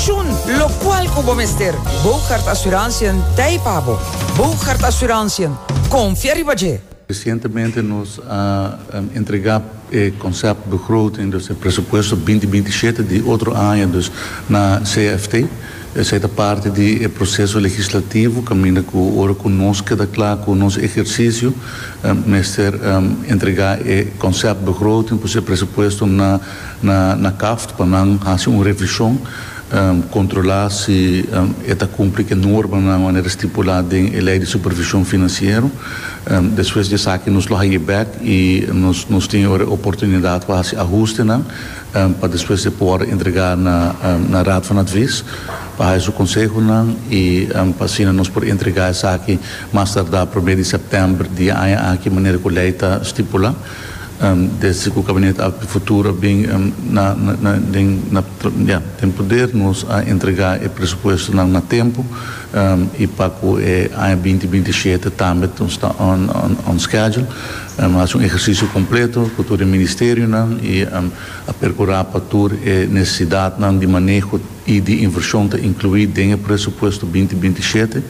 Shun locual cu bo mester. Bougaard Assurantiën t'ei pa bo. Bougaard Assurantiën, confia riba dje! Recientemente nos a entrega e concept begroting, dus e presupuesto binti binti shete di otro aña dus na CFT. Esey ta parti di e proceso legislativo caminda cu ora cu nos keda cla cu nos ehercicio mester entrega e concept begroting, pues e presupuesto na Na na kaft pa nan hasi un revishon, kontrolá si e ta kumpli ku e normanan manera stipulá den e Lei di Supervishon Finansiero. Despues di esaki nos lo hañ'é bèk i nos nos tin yora e oportunidat pa hasi ahustenan pa despues e por entregá na na Raad van Advies pa haña su konsehonan i pa asina nos por entregá esaki mas tardá promé di sèptèmber di e aña aki manera ku lei ta stipulá. Desde cu Cabinet Alto di Futuro a bin den poder nos a entrega e presupuestonan na tempo y pa cu e aña binti binti shete tambe nos ta on schedule. A haci un ehercicio completo cu tur e ministerionan y a percura pa tur e necesidadnan di maneho. y di inversion ta inclui den e presupuesto binti binti y shete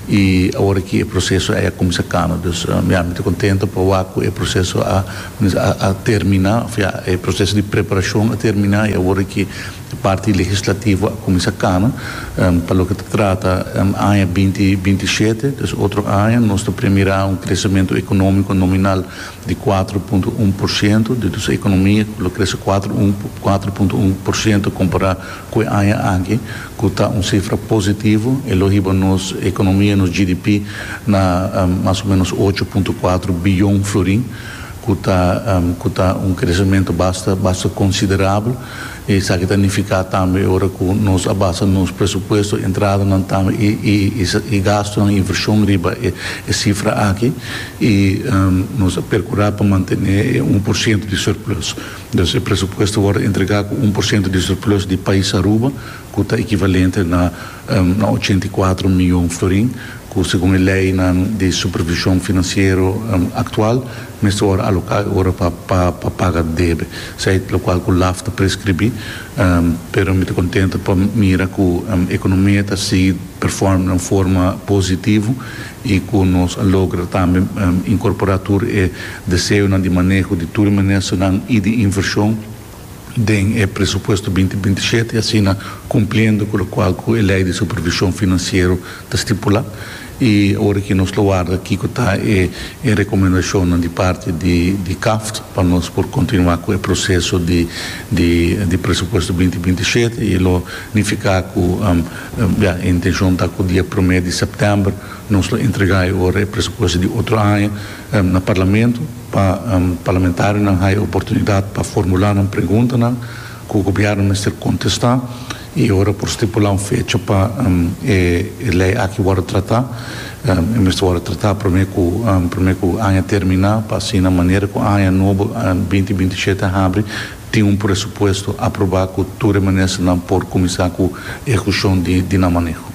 y aworaki e proceso a ya cuminsa cana dus ya mi ta contento pa wak cu e proceso a a termina of ya e proceso di preparacion a termina y aworaki e parti legislativo a cuminsa cana pa loke ta trata aña binti binti y shete dus otro aña nos ta premira un crecemento economico nominal di kuater punto un por siento di nos ekonomia ku lo krese kuater un kuater punto un por siento kompará ku e aña aki ku ta un sifra positivo e lo hiba nos ekonomia nos GDP na mas o menos ocho punto kuater biyon florin ku ta ku ta un kresementu basta basta konsiderabel Esaki ta nifiká tambe ora ku nos a basa nos presupuesto, entradanan tambe i gastunan, invershon riba e sifra aki i nos a perkurá pa mantené e un por siento di surplus. Dus e presupuesto wòrdu entregá ku un por siento di surplus di pais Aruba ku ta ekivalente na ochenta i kuatro mion florin ku segun e leinan di supervishon finansiero aktual, Mester ora aloká e ora pa pa paga debe, sey lokual ku laf ta preskribí. Pero mi ta kontento pa mira ku ekonomia ta sigui performa den un forma positivo i ku nos a logra tambe inkorporá tur e deseonan di maneho di tur e ministernan i di invershon. den e presupuesto binti binti shete, asina cumpliendo cu locual cu e Ley di Supervision Financiero ta stipula. Y ora que nos lo warda kico ta e e recomendacionnan di parti di di CAFT pa nos por continua cu e proceso di di di presupuesto binti binti shete y e lo nifica cu ya e intencion ta cu dia prome di September nos lo entrega e ora e presupuesto di otro aña na Parlamento. Pa parlamentarionan haya oportunidad pa formula nan preguntanan cu Gobierno mester contesta y ora por stipula un fecha pa e ley aki wordo trata, e mester wordo trata prome cu prome cu aña termina pa asina manera cu aña nobo binti binti shete a habri tin un presupuesto aproba cu tur e ministernan por cuminsa cu ehucion di nan maneho.